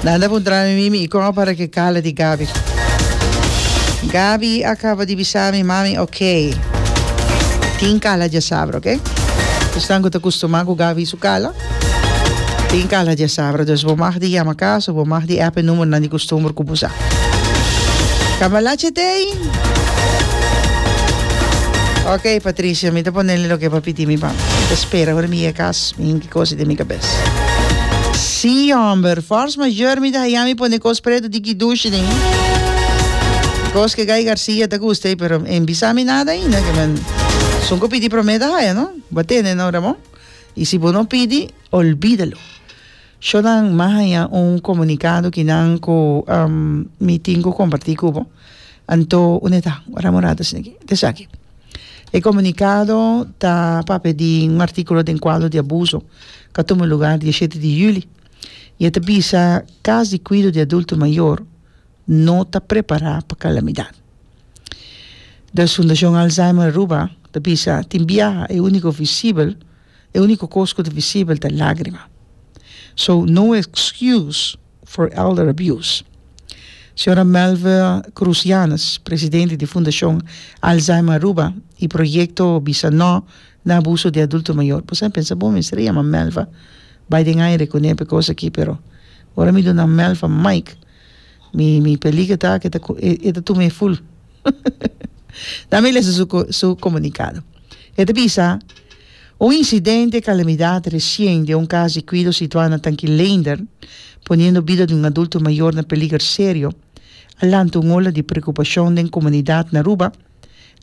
Nan ta puntrami mi mi i kon a para ke kala di Gabi. Gabi a kaba di bisami mami ok. Tin kala dja sabra ok. Esnan ku ta kustumá ku Gabi su kala tin kala dja sabra dus bo mag di yama kas of bo mag di app e numbernan di kustumber ku bo sa. Cambalache Tei. Ok Patricia mi ta ponele loke bo a pidi mi pa mi ta spera ora mi yega kas mi hinki kosi den mi. es. Sí homber, force mayor mi ta haya mi pone cos preto di kidushi den e cos ke Guy Garcia ta gusta ey pero en bisa mi nada ainda ke men sun cu pidi prome ta haya no bo tene no Ramon y si bo no pidi olbidalo. Sho nan ma haya un comunicado ki nan cu mi tin cu comparti cu bo anto un e ta ora morado esaki. E komunikado ta papia di un artíkulo den kuadro di abuso ku a tuma lugá dia shete di yüli i e ta bisa kas di kuido di adulto mayor no ta prepará pa kalamidat. The Fundashon Alzheimer Aruba ta bisa tin biaha e úniko visibel e úniko kos ku ta visibel ta lágrima. So no excuse. for Elder Abuse. Señora Melve Cruz Yanez, presidente di Fundacion Alzheimer Aruba y Proyecto Bisa No na Abuso di Adulto Mayor. Bo sa e pensa, bo mester a yama Melva bay den aire cu nepe cos aki pero ora mi duna Melva mic mi mi peliga ta cu e ta e ta tuma e full dame lesa su comunicado. E ta bisa. Un incidente, calamidad, recien di un cas di cuido situa na Tanki Leender, poniendo bida di un adulto mayor na peliger serio, a lanta un ola di preocupacion den comunidad na Aruba,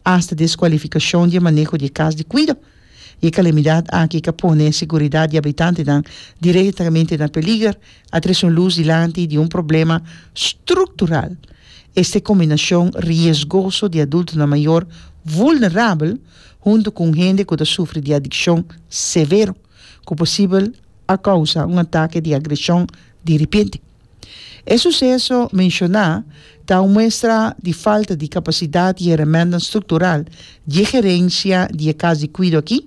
hasta descualificacion di e maneho di e cas di cuido. Y e calamidad aki ca pone e seguridad di habitantenan directamente na peliger, a trece un luz dilanti di un problema structural. Este combinacion riesgoso di adultonan mayor vulnerabel, huntu ku un hende ku ta sufri di adikshon severo ku posibel a kousa un atake di agreshon di ripente. E suseso menshoná ta un muestra di falta di kapasidat i herementan struktural di e gerensia di e kas di kuido akí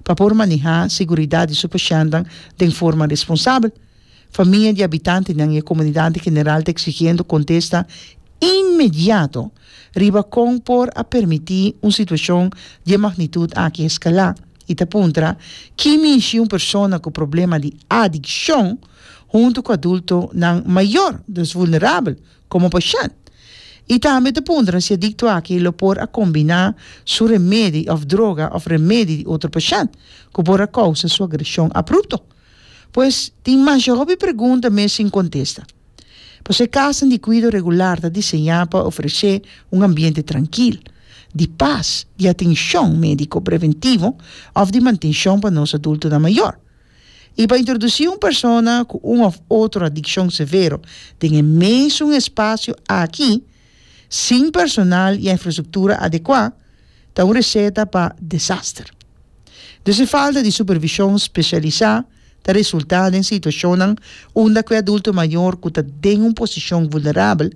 pa por manehá seguridat di su pashentan den forma responsabel, Famia di habitantenan i e komunidat en general ta eksigiendo kontesta inmediato riba kon por a permití un situashon di e magnitut aki eskalá i ta puntra ki mishi un persona ku problema di adikshon huntu ku adultonan mayor, dus vulnerabel, komo pashènt i tambe ta puntra si adikto aki lo por a kombiná su remedi òf droga òf remedi di otro pashènt ku por a kousa su agreshon aprupto. Pues, tin masha hopi pregunta mes sin contesta. Pasobra e casanan di cuido regular ta diseña pa ofrece un ambiente trankil, di pas, di atencion medico preventivo of di mantencion pa nos adultonan mayor. Y pa introduci un persona cu un of otro adiccion severo den e mesun espacio aki, sin personal i infrastruktura adekuá ta un reseta pa desaster. Dus e falta di supervishon spesialisá ta resultá den situashonnan unda ku e adulto mayor ku ta den un posishon vulnerabel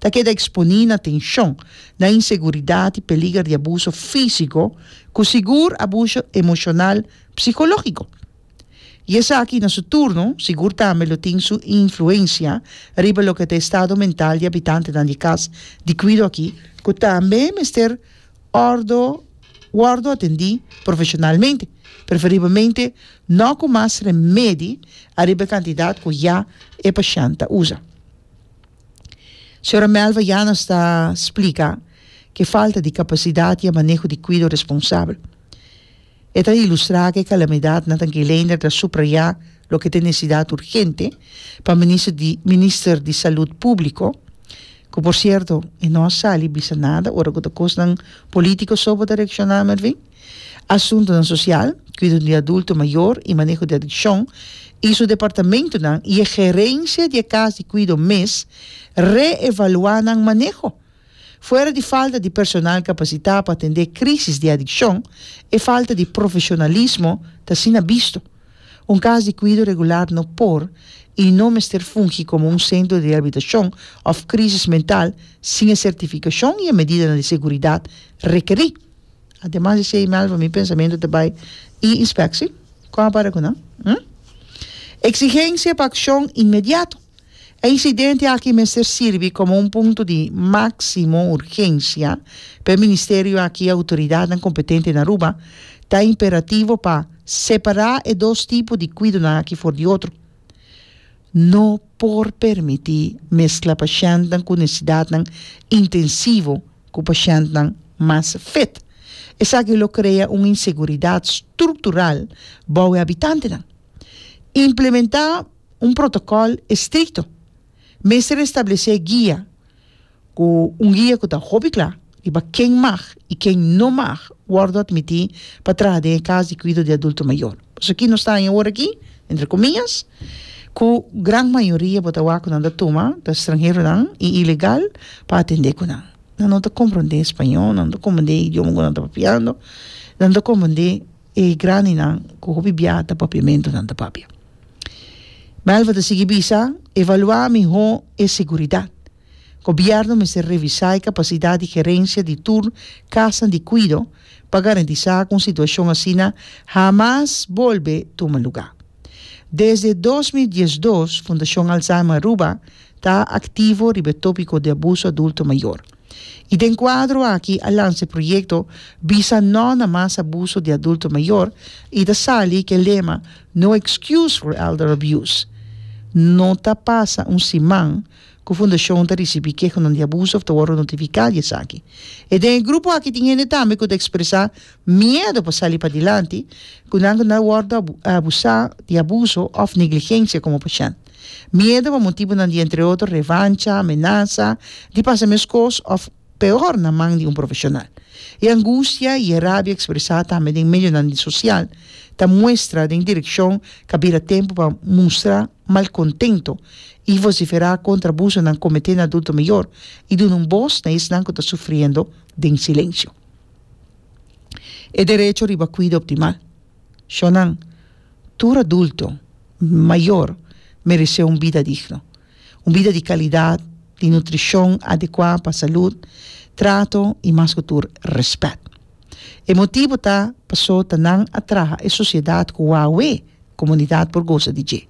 ta keda eksponí na tenshon, na inseguridat i peliger di abuso físiko, ku sigur abuso emoshonal psikológiko. I esaki na su turno sigur tambe lo tin su influensia riba loke ta e estado mental di abitantenan di Kas di Kwido aki, ku tambe mester wòrdu wòrdu atendí profeshonalmente, preferibelmente nò ku mas remedi ariba e kantidat ku ya e pashènt ta usa. Señora Melva Llanos ta splika ku e falta di kapasidat i e maneho di kwido responsabel E ta ilustrá ku e kalamidat Nathan Geleiner ta suprayá loke ta e nesidat urgente pa Minister di Minister di Salud Públiko, ku por sierto e no a sali bisa nada ora ku ta kosnan polítiko so bo ta reakshoná Mervin, Asuntunan Sosial, Kuido di Adulto Mayor i Maneho di Adikshon i su departamentunan i e gerensia di e kas di kuido mes re-evaluá nan maneho. Fuera di falta di personal kapasitá pa atendé krísis di adikshon, e falta di profeshonalismo ta asina bisto. Un kas di kuido regular no por i no mester fungi komo un sentro di reabilitashon òf krísis mental sin e sertifikashon i e medidanan di seguridat rekerí. Ademas di esei, Melva, mi pensamentu ta bai i inspekshi. Kon a para ku nan? Eksigensia pa akshon inmediato. E incidente aki mester sirbi como un punto di maximo urgencia pa e Ministerio aki y autoridadnan competente na Aruba, ta imperativo pa separa e dos tipo di cuidonan aki for di otro. No por permiti mezcla pashentnan cu necesidadnan intensivo cu pashentnan mas fit. Esaki lo crea un inseguridad structural bou e habitantenan. Implementa. un protokòl estrikto. Mester establesé guia ku un guia ku ta hopi kla riba ken mag i ken no mag wòrdu atmití pa traha den e kas di kuido di adulto mayor. Pasobra nos ta haña ora aki, entre komiñas, ku gran mayoria bo ta wak ku nan ta tuma ta stranheronan i ilegal pa atendé ku nan. Nan no ta komprondé spañó, nan no ta komprondé e idioma ku nan ta papiando, nan no ta komprondé. E grandinan ku hopi biaha ta papiamentonan ta papia. Melva ta sigui bisa, Evaluá mihó e seguridat. Gobièrnu mester revisá e kapasidat di gerensia di tur kasanan di kuido pa garantisá ku un situashon asina hamas bolbe tuma lugá. Desde dos mil diesdos, Fundashon Alzheimer Aruba ta aktivo riba e tópiko di abuso adulto mayor. y den cuadro aki a lanza e proyecto Bisa No na Mas Abuso di Adulto Mayor y ta sali cu e lema No Excuse for Elder Abuse. No ta pasa un siman cu Fundacion ta ricibi kehanan di abuso of ta worde notifica di esaki. E den e grupo aki tin hende tambe cu ta expresa miedo pa sali padilanti cu nan cu nan a worde abusa di abuso of negligencia como pashent. Miedu pa motibunan di entre otro revancha, amenasa di pasa mescos of peor na man di un profesional. E angustia y e rabia expresa tambe den medionan di social ta muestra den direccion ca bira tempo pa mustra malcontento y vocifera contra abusonan comete na adulto mayor y duna un boz na esnan cu ta sufriendo den silencio e derecho riba cuida optimal. Shónan, tur adulto, mayor, meresé un bida digno. Un bida di kalidat, di nutrishon adekuá pa salud, trato i mas ku tur rèspèt. E motibu ta pasó ta nan a traha e sosiedat ku Wawé komunidat por gosa di dje.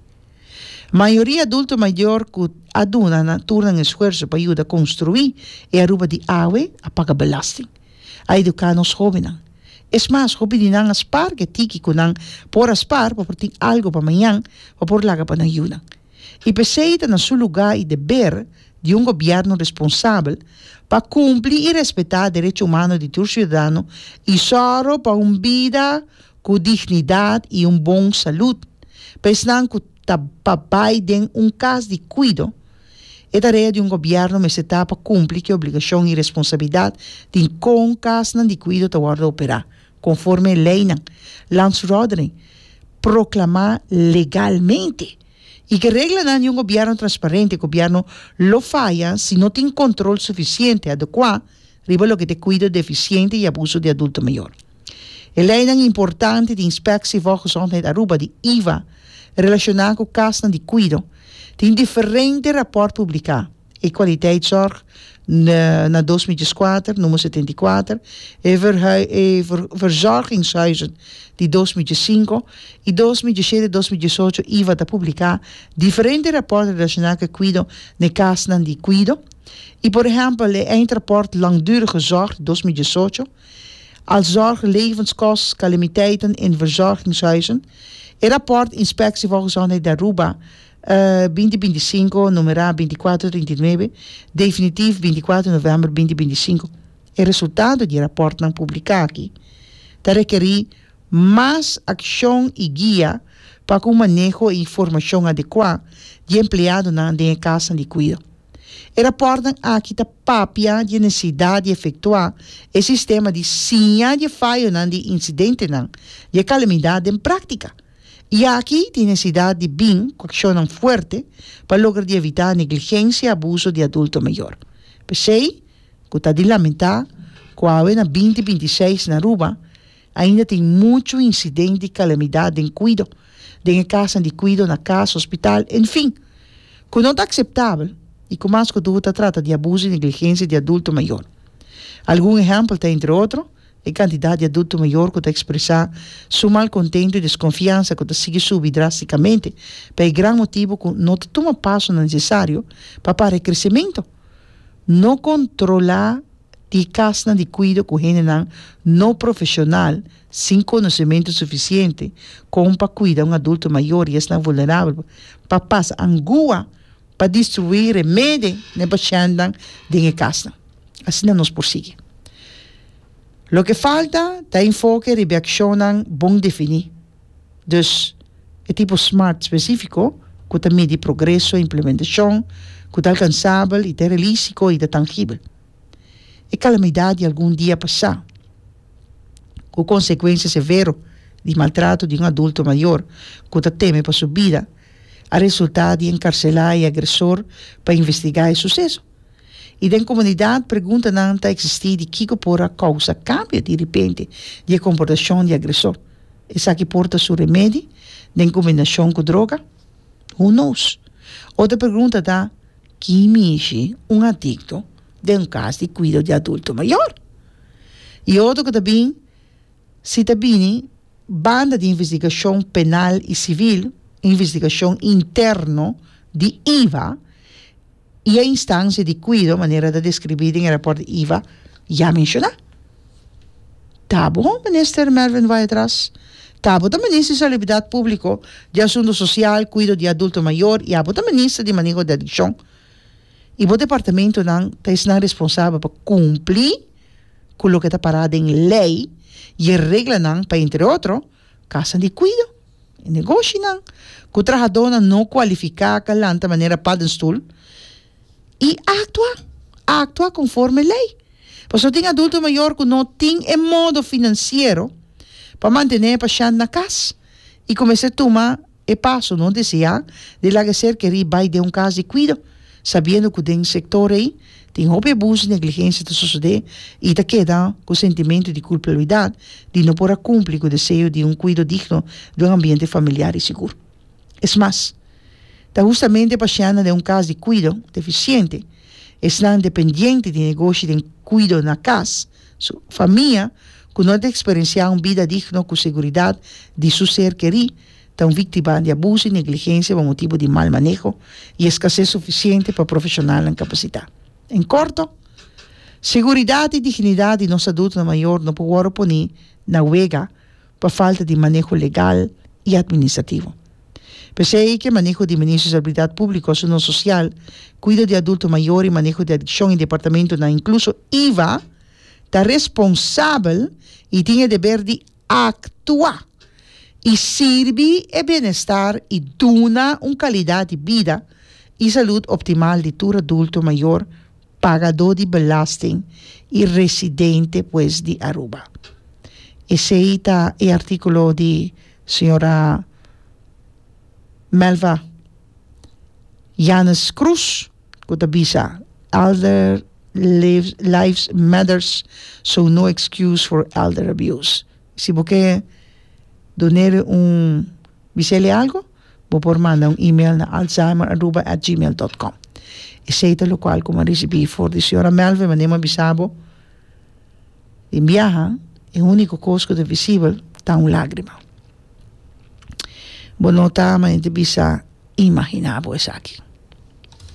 Mayoria adulto mayor ku a duna nan tur nan esfuerso pa yuda konstruí e Aruba di awe a paga belasting, a eduká nos hóbennan, Es mas, hopi di nan a spar ke tiki ku nan por a spar pa por tin algu pa mañan pa por laga pa nan yunan. I p'esei ta na su lugá i deber di un gobièrnu responsabel pa kumpli i respetá derecho humano di tur siudadano i sòru pa un bida ku dignidat i un bon salud pa esnan ku ta pa bai den un kas di kuido E tarea di un gobièrnu mester ta pa kumpli ku e obligashon i responsabilidat di kon kasnan di kuido ta wòrdu operá, konforme e leinan, Landsverordening, proklamá legalmente. I ku e reglanan di un gobièrnu transparente, e gobièrnu lo faya si no tin kontrol sufisiente, adekuá, riba loke ta e kuido defisiente i abuso di adulto mayor. E leinan importante di Inspectie Volksgezondheid Aruba di IVA relashoná ku kasnan di kuido tin diferente raport publiká, e Kwaliteitszorg na dos mi dieskuater, Número setenta i kuater, e Verzorgingshuizen di dos mi diesinko i dos mi diesete, dos mi diesocho IVA ta publiká diferente raport relashoná ku e kuido n'e kasnan di kuido. I por ehèmpel e eindrapport Langdurige zorg dos mil diesocho, Als zorg levenskostcalamiteiten in verzorgingshuizen, e rapport Inspectie volgezondheid d'Aruba, binti binti i sinku, numerá binti i kuater trinta i nuebe, definitief binti i kuater novèmber binti binti i sinku. E resultado di e rapportnan publiká aki ta rekerí mas akshon i guia pa ku un maneho i informashon adekuá di empleadonan den e kasnan di kuido. E rapòrtnan aki ta papia di e nesesidat di efektuá e sistema di siña di e fayonan di e insidentenan di e kalamidat den práktika i aki tin nesesidat di bin ku akshonnan fuerte pa logra di evitá negligensia i abuso di adulto mayor. P'esei ku ta di lamentá ku awe na binti binti seis na Aruba, Ainda tin muchu incidente di calamidad den cuido, den e casanan di cuido, na cas, hospital, en fin, cu no ta aceptabel y cu mas cu tudu ta trata di abuso y negligencia di adulto mayor. Algun ehempel ta entre otro, e cantidad di adulto mayor cu ta expresa su malcontento y desconfiansa cu ta sigui subi drasticamente pa e gran motibo cu no ta tuma pasonan necesario pa para e crecemento No controla di casnan di cuido cu hendenan no profesional sin conocemento suficiente con pa cuida un adulto mayor y esnan vulnerabel pa pasa angua pa distribuir remede n'e pashentnan den e casnan. Asina nos por sigui. Loke falta ta enfoke riba e accionnan bon defini. Dus, e tipo smart spesífiko ku ta midi progreso i implementashon, ku ta alkansabel i ta realístiko i ta tangibel. E kalamidat di algun dia pasá, ku konsekuensia severo di maltrato di un adulto mayor ku ta teme pa su bida, a resultá di enkarselá e agresor pa investigá e suseso. I den komunidat preguntanan ta eksistí di kiko por a kousa kambio di ripente di e komportashon di agresó. Esaki por ta su remedi den kombinashon ku droga? Who knows? Otro pregunta ta, Ki mishi un adikto den un kas di kuido di adulto mayor? I otro ku ta bin, Si ta bini banda di investigashon penal i sivil, investigashon interno di iva, i e instansia di kuido manera ta deskribí den e rapòrt Iva ya menshoná. Ta bon, Minister Mervin Vaetras, ta bo ta Minister di Salubridat Públiko, di Asuntu Sosial, Kuido di Adulto Mayor i abo ta Minister di Maneho di Adikshon i bo departamentunan ta esnan responsabel pa kumplí ku loke ta pará den lei i e reglanan pa entre otro Kasa di kuido i negoshinan ku trahadónan no kualifiká ka lanta manera paddenstoel i aktua aktua konforme lei. Pasobra tin adulto mayor ku no tin e modo finansiero pa mantené e pashènt na kas i kumesá tuma E paso no deseá di laga ser kerí bai den un kas di kuido, sabiendo ku den sektor ei tin hopi abuso i negligensia ta sosodé i ta keda ku sentimento di kulpabilidat di no por a kumpli ku deseo di un kuido digno di un ambiente familiar i sigur. Es mas, ta hustamente pasianan den un kas di kuido defisiente, esnan dependiente di negoshi den kuido na kas, Su famia, ku no a ta eksperensiá un bida digno ku seguridat di su ser kerí, ta un víktima di abuso i negligensia pa motibu di mal maneho i eskasés sufisiente pa profeshonalnan kapasitá. En korto, seguridat i dignidat di nos adultonan mayor no por wòrdu poní na wega. pa falta di maneho legal y administrativo. P'esei ke maneho di Ministro di Salubridad Público, Asunto Social, Cuido di Adulto Mayor y Maneho di Adiccion y departamentonan, incluso IVA, ta responsabel y tin e deber di actua y sirbi e bienestar y duna un calidad di bida y salud optimal di tur adulto mayor, pagadó di belasting i residente pues di Aruba. Esei ta e artíkulo di señora Melva Yanez Cruz ku ta bisa Elder lives matters so no excuse for elder abuse. Si bo ke don'e un bis'e algo. Bo por manda un email na alzheimer@gmail.com. Esei ta lokual ku mi a risibí for di señora Melvin wanneer mi a bisa bo den biaha e úniko kos ku ta visibel ta un lágrima. Bo no ta manera di bisa imaginá bo esaki.